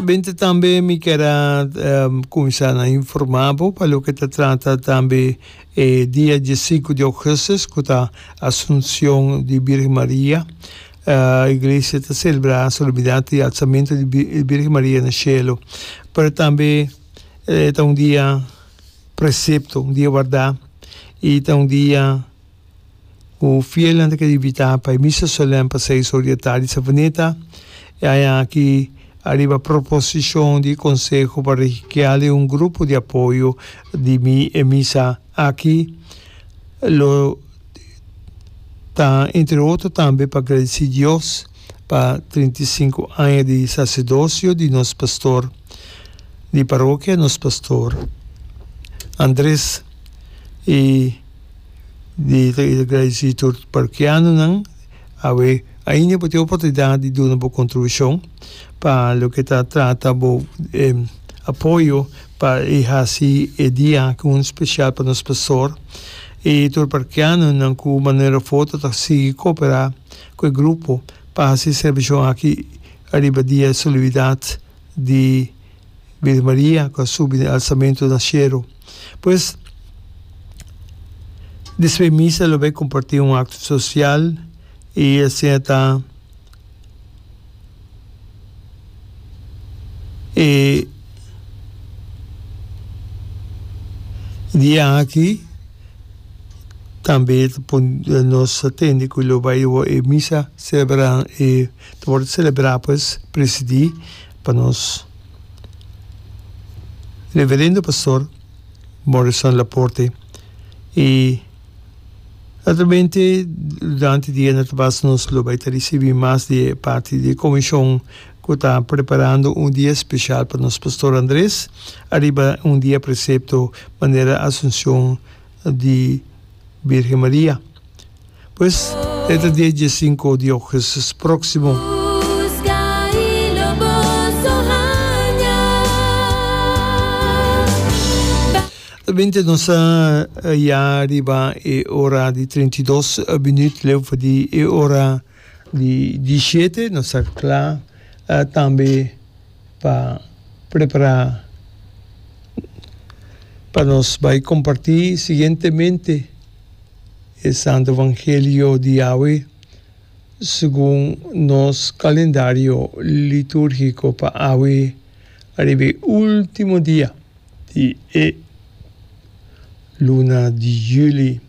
Bende tambe mi kier a cuminsa na informa bo pa loke ta trata tambe e dia diesinku di augustus cu ta Asuncion di Birgen Maria. Iglesia ta celebra solemnidad di alzamento di Birgen Maria na cielo. Pero tambe ta un dia precepto, un dia wardá y ta un dia. Ku fielnan ta kere invitá pa e misa solèn pa seis or di e tardi Savaneta, e aña aki ariba proposishon di e konseho pa rehikial i un grupo di apoyo di mi e misa aki lo ta entre otro tambe pa gradisí Dios pa trinta i sinku aña di saserdosio di nos pastor di parokia nos pastor Andres i di ta kiri gradisí tur parokianonan. Awe ainda bo tin oportunidat di duna bo kontribushion pa loke ta trata bo apoyo pa e hasi e dia aki un spesial pa nos pastor i tur parokianonan ku Manuel Rafoto ta sigui koperá ku e grupo pa hasi serbishon aki ariba dia e solibidat. di Virgen Maria cu a subi den alzamento den cielo. Pues, despues misa lo bay comparti un acto social y asina ta e dia aki tambe nos ta tende cu lo bay misa celebra e. Ta wòrdu selebrá pues presidí pa nos Reverendo Pastor Morrison Laporte i naturalmente durante dia na ta basta nos lo bai ta risibí mas di e parti di e komishon ku ta preparando un dia spesial pa nos Pastor Andres ariba un dia presepto manera Asunshon di Birgen Maria. Pues e ta dia die sinku di ougustus proksimo. Tabende nos ta ya riba e ora di treinta i dos minüt leu for di e ora di di shete. Nos ta kla tambe. pa prepará pa nos bai kompartí siguientemente e Santu Evangelio di Yahwe segun nos kalendario litúrgiko pa awe ariba e último dia di e luna di juli.